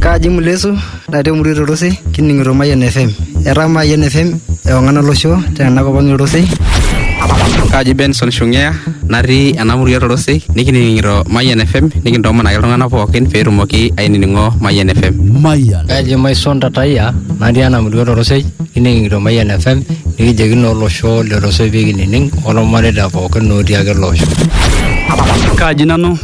Kaji ng'ole Yesu natii emurua e Torosei kining'ito Mayian FM. Etaa Mayian FM ewang'an olosho tena kop ang' e Torosei. Kaji Benson Shung'ea natii ena murua e Torosei nikining'ito Mayian FM nikintoomon ake iltung'anak pookin pee etumoki ainining'o Mayian FM. Mayian. Kaji Maison Tatayia natii ena murua e Torosei kining'ito Mayian FM nikijoki naa olosho le Torosei pee kinining' olmareita pookin otii ake ele osho. Kaji nanu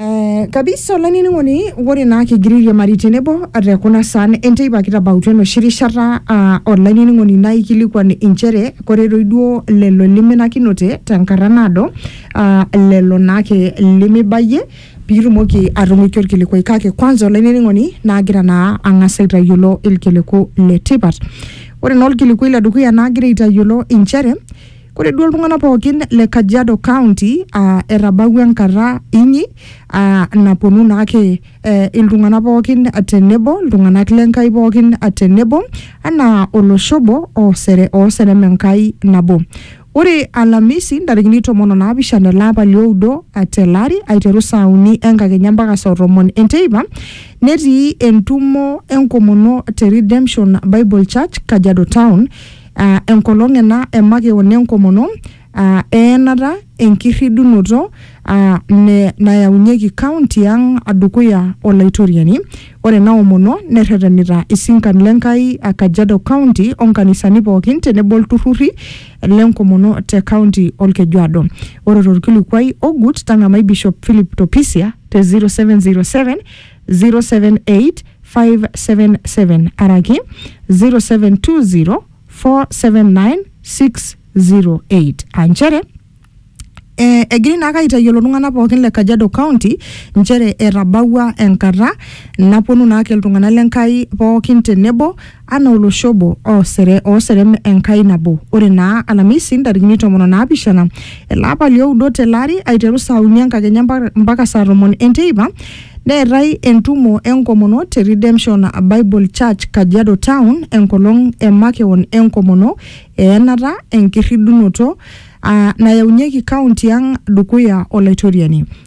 Eh, kabisa olainining'oni ore naa kigira airiamari tenebo te kuna saan enteipa kitabautua enoshi rishata ah, olainining'oni naikilikuan inchere kore toi duo lelo liminakinote tenkata naado ah, lelo naake limibayie pitumoki atung'uiki orkilikuai kake kwanza olainining'oni naagira naa ang'as aitayiolo ilkiliku letipat ore naa olkilikuai ledukuya naagira aitayiolo inchere Ore duo iltung'anak pookin le Kajiado County uh, etabawua enkata inyi uh, naponu naake eh, iltung'anak pookin tenebo iltung'anak le Nkai pookin tenebo anaa olosho obo osere oserem Enkai nabo. Ore Alhamisi ntarikini tomon onaapishana ele apa lioudo tele ari aiteru saa uni enkakenya mpaka saa tomon enteipa netii entumo enkomono te Redemption Bible Church Kajiado Town aa enkolong ena e makeon enkomono aa eenata enkirridunoto aa ne nayaunyieki kaunti ang dukuya Olaitoriani. Ore ena omono nerretenita isinkan le Nkai a Kajiado County o nkanisani pookin tenebo ilturrurri le nkomono te kaunti Olkejuado. Ore to lkilikuai ogut tang'amai Bishop Philip Topisia te 0707 078577 araki 0720479608 aa nchere eh, egiri naake aitayiolo iltung'anak pookin le Kajiado County nchere etabawua enkata naponu naake iltung'anak le Nkai pookin tenebo anaa olosho obo oosere ooserem Enkai nabo. Ore naa Alamisi ntarikini tomon o naapishana ele apa lioudo tele ari aiteru saa uni enkakenya mpa- mpaka saa tomon enteipa neetae entumo enkomono te Redemption Bible Church Kajiado Town enkolong e makeon enkomono eenata enkirridunoto aa nayaunyieki kaunti ang dukuya Olaitoriani.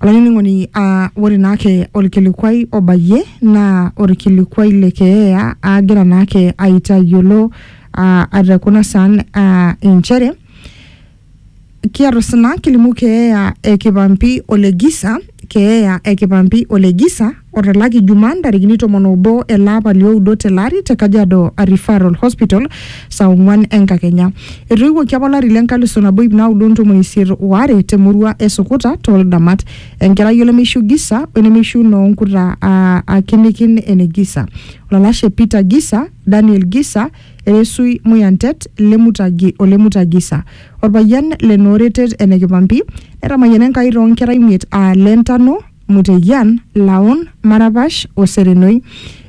Olainining'oni aa ore naake olkilikuai obayie naa olkilikuai le keeya aagira naake aitayiolo aa te kuna saan aa inchere kiata osina kilimu keeya e Kipampi o Legisa, keeya e Kipampi o Legisa. Otalaki Juma ntarikini tomon obo ele apa lioudo tele ari te Kajiado Referral Hospital saa ong'uan enkakenya. Etoiwuoki apa olari le nkalisu nabo ip naudo ntomoni isiet o are te murua e Sukuta too Ldamat. Enkerai olemeishiu Gisa o enemeishiu noo nkuta aa akinikin ene Gisa. Olalashe Peter Gisa, Daniel Gisa, Eresui Muyantet, Lemutagi o Lemuta Gisa. Olpayian le Nooretet ene Kipampi. Netamayiana Enkai too nkera imiet aa Lentano, Muteyian, Laon, Marapash o Serenoi.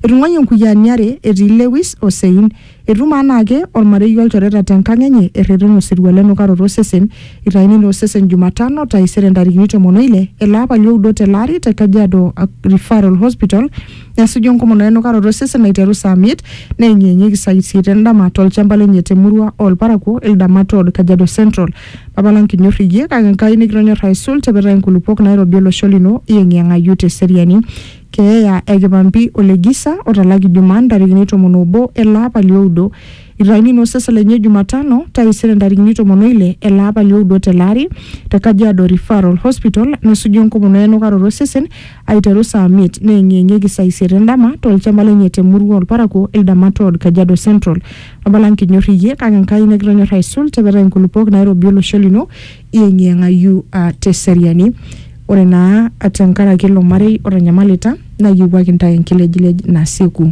Etung'uayie nkuyiaani are etii Lewis o Sein. Etumo anaake olmarei o lchoreta te nkang enye erreten osirua le nukaroto o sesen. Eitaini naa osesen Jumatano, taisere ntarikini tomon o ile ele apa li oudo tele ari te Kajiado Referral Hospital esuju enkomono e nukaroto o sesen aiteru saa miet neyeng'iyeng'ieki saa isiet en dama to lchamba lenye te murua oo lparakuo Ildamat Ward, Kajiado Central. Papa lang kinyor iyie kake Enkai nikitonyor aisul tipita inkulupuok nairobi olosho lino iyeng'iyeng'ayu te seriani. Keeya e kipampi o le gisa otalaki Jumaa ntarikini tomon obo ele apa li oudo. Itayuni naa osesen lenye Jumatano taisere ntarikini tomon o ile ele apa li oudo tele ari te Kajiado Referral Hospital nesuju enkomono e enukaroto osesen aiteru saa miet neyeng'iyeng'ieki saa isiet endama tolchamba lenye te murua olparakuo Ildamat Road, Kajiado Central. Abala nkinyor iyie kake Enkai nikitonyor aisul tepetai nkulupuok nairobi olosho lino iyeng'iyeng'ayu uh, te seriani. Ore naa tenkaraki ilo marei otanyamalita nayiewuaki ntae enkilejilej nasieku.